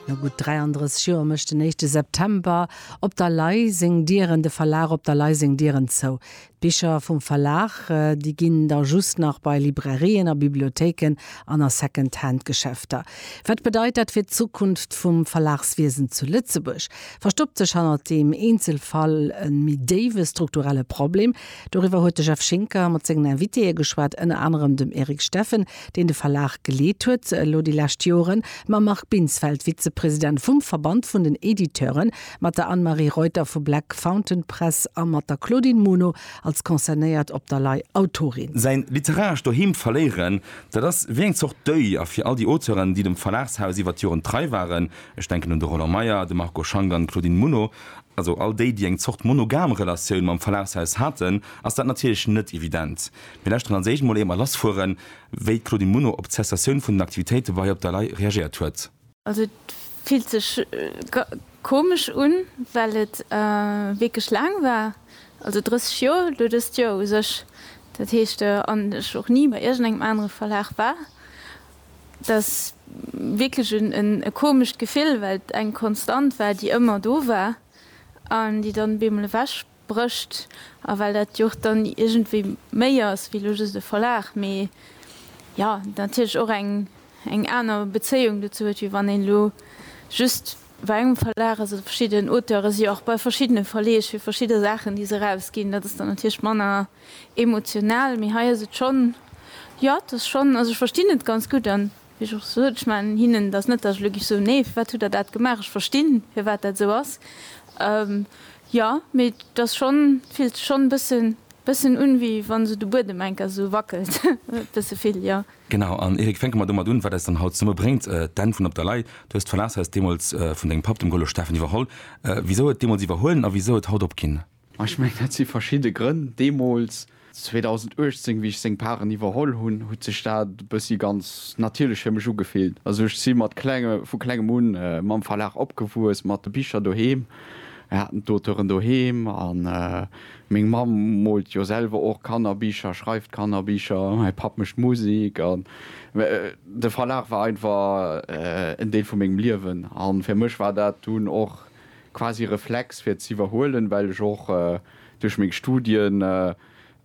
No gutt 33 Joer mécht den éischte September op der Lay seng Dieren, de Verlag op der Lay seng Dieren zou. D'Bicher vum Verlag, déi ginn da just nach bei Librairien a Bibliothéiken an a Second-Hand-Geschäfter. Wat bedeit dat fir d'Zukunft vum Verlagswiesen zu Lëtzebuerg? Verstoppt sech hannert deem Eenzelfall e méi déiwe strukturelle Problem? Doriwwer huet de Jeff Schinker mat sengen Invitéë geschwat, ënner anerem dem Eric Steffen, deen de Verlag geleet huet elo déi lescht Joren, mam Marc Binsfeld, Vizepresident vum Verband vun den Editeuren, mat der Anne-Marie Reuter vu Black Fountain Press a mat der Claudine Muno als concernéiert op der Lay Autorin. Säin literarescht Doheem verléieren, dat ass wéi eng Zort Deuil. A fir all déi Auteuren, déi dem Verlagshaus iwwert d'Joren trei waren, ech denken un de Roland Meyer, de Marco Schank an d'Claudine Muno, also all déi, déi eng Zort monogam Relatioun mam Verlagshaus haten, ass dat natierlech net evident. Mir lauschteren als éischt mol éier mer lass fueren, wéi d'Claudine Muno op d'Cessatioun vun den Aktivitéite bei hir op der Lay reagéiert huet. Also et fillt sech komesch un, well et wierklech laang war, also 30 Joer, elo dëst Joer u sech, dat heescht an ech och ni bei iergendengem anere Verlag war. Et ass wierklech e komescht Gefill, well et eng Konstant war, déi ëmmer do war an déi dann op eemol ewech. brécht a well dat jo och dann iergendwéi méi ass wéi elo just e Verlag, mee jo natierlech och eng eng aner Bezéiung dozou huet, wéi wann een elo just bei engem Verlag ass oder verschidden Auteuren si jo och bei verschiddene Verleeg fir verschidde Saachen, déi se erausginn. Dat ass dann natierlech manner emotional, mee hei ass et schonn, jo et ass schonn, also ech verstinn et ganz gutt an Wéi ech och sot, ech man hinnen dat net, datt ech elo géif soen, nee, firwat hutt Der dat gemaach, ech verstinn, firwat dat esou ass. Jo, mee et ass schonn, et fillt sech schonn e bëssen, bëssen un, wéi wa sou de Buedem enker esou wackelt, e bësse vill, jo. Genau, an Eric, fänke mer domat un, wat eis dann haut zesummebréngt, d'Enn vun Op der Lay. Du hues d'Verlagshaus deemools vun dengem Papp, dem Golo Steffen, iwwerholl. Wisou et deemools iwwerhuelen a wisou et haut opginn? Ma ech mengen, dat si verschidde Grënn. Deemools, 2018, wéi ech seng Paren iwwerholl hunn, huet sech dat e bëssi ganz natierlech fir mech ugefillt. Also ech si mat klenge, vu klengem un mam Verlag opgewuess, mat de Bicher doheem. Mir haten d'Auteuren doheem a meng Mamm moolt jo selwer och Kannerbicher, schreift Kannerbicher, mäi Papp mécht Musek. An de Verlag war einfach en Deel vu mengem Liewen. A fir mech war dat dunn och. quasi Reflex fir ze iwwerhuelen, well ech och duerch meng Studien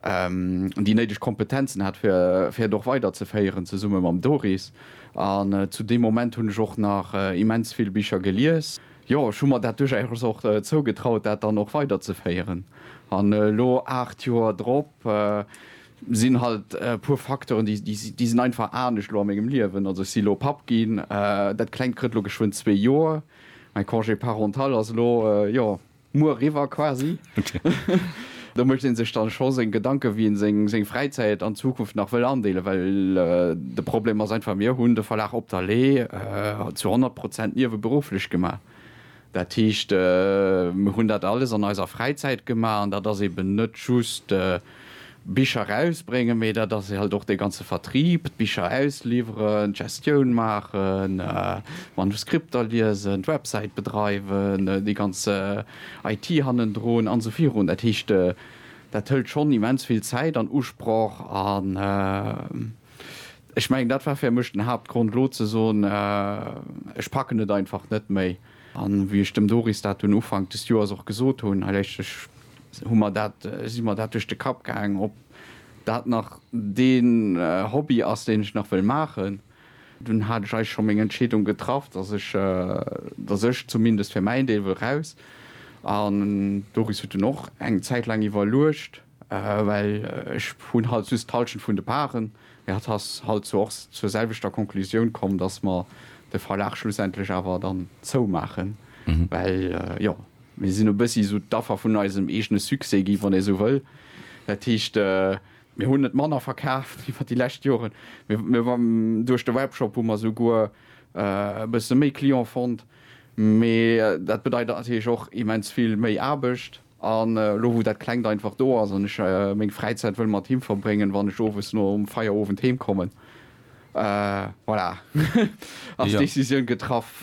déi néideg Kompetenzen hat fir fir et och weiderzeféieren, zesumme mam Doris. An zu deem Moment hunn ech och nach immens vill Bicher gelies. Jo, ech hu mer dat duerchaus och zougetraut, dat dann och weiderzeféieren. An elo, aacht Joer drop, sinn halt e puer Facteuren, déi déi sinn einfach anescht elo a mengem Liewen. Also ech si elo Papp ginn, dat Klengt krëtt elo geschwënn zwee Joer. Mäi Congé parental ass elo, jo, muer eriwwer quasi. Do mécht ee sech dann scho seng Gedanken, wéi een seng Fräizäit an Zukunft nach wëll andeelen, well de Problem ass einfach, mir hunn de Verlag Op der Lee zu 100 Prozent nieweberufflech gemaach. Dat heescht, mir hunn dat alles an eiser Fräizäit gemaach an dat ass eben net just. Bicher rausbréngen, mee dat ass halt och dee ganze Vertrieb, d'Bicher ausliwweren, d'Gestioun maachen, d'Manuskripter liesen, d'Websäit bedreiwen, déi ganz IT hannendrun an esou virun. Dat heescht, dat hëlt schonn immens vill Zäit an Usproch an ech mengen, dat war fir mech den Haaptgrond, elo ze soen, ech packen et einfach net méi. An wéi ech dem Doris dat dunn Ufank des Joers och gesot hunn, hei léisst ech hu mer dat, si mer dat duerch de Kapp gaang, ob dat nach dee Hobby ass, deen ech nach wëll maachen. Dunn hat ech eigentlech scho meng Entscheedung getraff, dass ech, dass ech zumindest fir mäin Deel wëll raus. An d'Doris huet dunn och eng Zäit laang iwwerluecht, well ech hunn halt just d'Hallschent vun de Parten. Mee hatt ass halt zwar och zur selwechter Conclusioun komm, dass mer de Verlag schlussendlech awer dann zoumaachen, well jo, Mir sinn e bëssi esou d'Affer vun eisem eegene Succès gi, wann ee esou wëll. Dat heescht, mir hunn net manner verkaaft iwwer déi lescht Joren, mä duerch de Webshop hu mer souguer e bësse méi Client fonnt. Mä dat bedeit natierlech och immens vill méi Aarbecht. An elo wou dat Klengt einfach do ass an ech meng Fräizäit wëll mat him verbréngen, wann ech owes nom Feierowend heemkommen, Voilà, ass d'Decisioun getraff.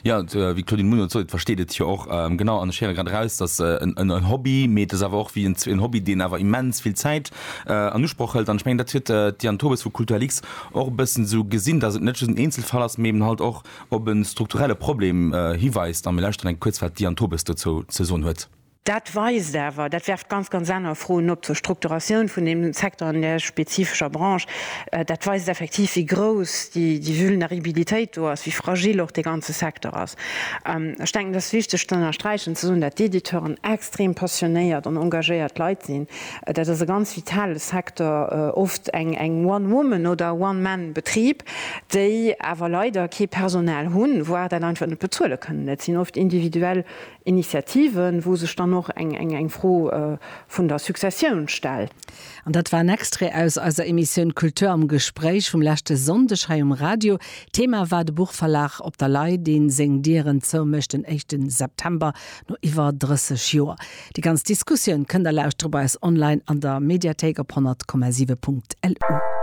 Jo, wéi d'Claudine Muno sot, versteet et jo och. Genau, an ech héiere grad eraus, dass en Hobby, mee et ass awer och wéi en Hobby, deen awer immens vill Zäit an Usproch hëlt. An ech mengen, dat huet d'Diane Tobes vu Kulturlix och e bëssen esou gesinn, dass et net just en Eenzelfall ass, mee eben halt och op e strukturelle Problem hiweist. A mir lauschteren eng kuerz, wat d'Diane Tobes dozou ze soen huet. Dat weist awer, dat werft ganz, ganz aner Froen op zur Strukturatioun vun deem Secteur an där spezifescher Branche, dat weist effektiv, wéi grouss déi Vulneribilitéit do ass, wéi fragil och dee ganze Secteur ass. Ech denken, et ass wichteg ze ënnersträichen, ze soen, dat d'Editeuren extrem passionéiert an engagéiert Leit sinn. Dat ass e ganz vitale Secteur, oft eng One Woman oder One Man Betrib, déi awer leider kee Personal hunn, voire dat einfach net bezuele kënnen. Dat sinn oft individuell Initiativen, wou sech dann och eng Fro vun der Successioun stellt. An dat war en Extrait aus eiser Emissioun Kultur am Gespréich vum leschte Sonndeg hei um Radio. Thema war de Buchverlag Op der Lay, dee seng Dieren zoumécht den éischte September, no iwwer 30 Joer. Déi ganz Diskussioun kënnt a lauschtert bei eis online an der Mediathéik op 100,7.lu.